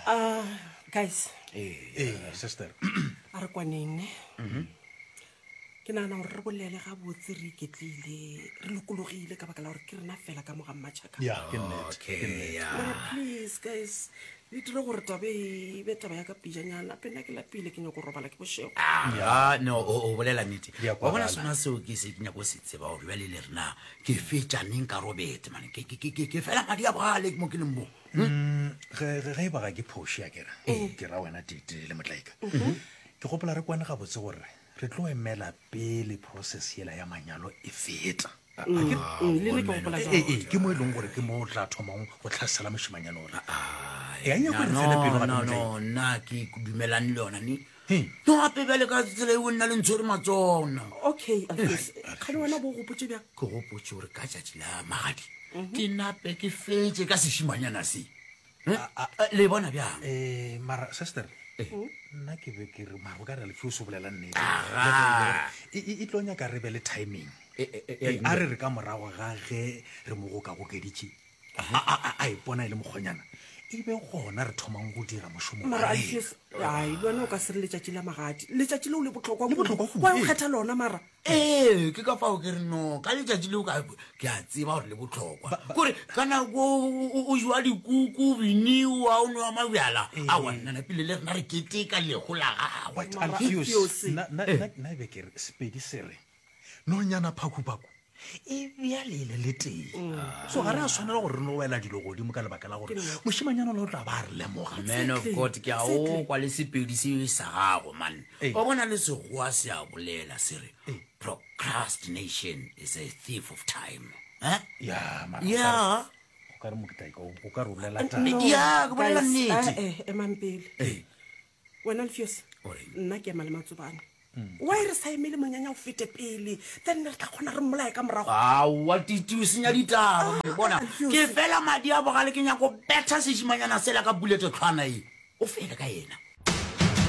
Ah, guys ee sister a re kwaneng ne Mhm. ke nagana gore re bolele gabotse re iketlile re lokologile ka baka la gore ke rena fela ka moga mmatšhaka ya ke nnete ke nnete. Mara please guys le dire gore tabe e be taba ya ka pijanyana pe nna ke lapile ke nyako robala ke bošego ya no o o bolela nnete wa bona kwagala. sona seo ke se ke nyako se tseba gore bjale le rena ke fetša neng ka robete mane ke- ke- ke ke- ke fela madi a bogale mo ke leng mo Mm, ge ge- ge e ba ga ke phoši a kere ke ra wena tete le motlaika ke gopola re kwane gabotse gore re tlo emela pele process yela ya manyalo e feta A- a ke- Mm, le nna ke gopola Ee, jwalo. ee, ke mo e leng gore ke mo o tla thomang go tlhasela mošemanyana ore e a nyako re tsele pelo gape no motlaika no nna ke dumelane le yona ne gape bjale ka tsela e o nna le ntshwere matsona okay kgale wena bo gopotse bja ke gopotse gore ka tšatši la magadi mhm. ke nape ke fetse ka sešimanyana se le bona bjang eh, mara sister eh. mhm. nna ke be ke re maro ka re lefe o se bolela nnete e tlo nyaka re be le timing eh, a re re ka morago ga ge re mo gokagokeditše a ipona e le mokgonyana e be gona re thomang go dira mošomoai le wena o ka se re letšatši la magadi letšatši leo le botlhokwa o kgetha lona mara ee ke ka fao ke re no ka letšatši leo ke a tseba gore le botlhokwa kore ka nako o jwa dikuku biniwa o nowa mabjala a wannana pele le rena re keteka lego la gagwe nna e be ke re sepedi sere nonyana phakuphaku e bjale e le le tee so ga re a tshwanela gore re no wela dilo godimo ka lebaka la gore mošimanyana le o tla ba a re lemoga man of god ke a o kwa le sepedi se e sa gago man Ee. o bona le segoa se a bolela se re Ee. procrastination is a thief of time Eh? ya mara ya o ka re mokitlaika o ka re o bolela taba ya ke bolela Guys, nnete eh, eh, emang pele Ee. wena lefeose nna ke ema le matsobane wa e re sa emele monyanya o fete pele then ne re tla kgona re mmolae ka morago aowa titi o senya ditaba ah, bona ke fela madi a bogale ke nyako betha sešimanyana sela ka bulete tlhwana e o fele ka ena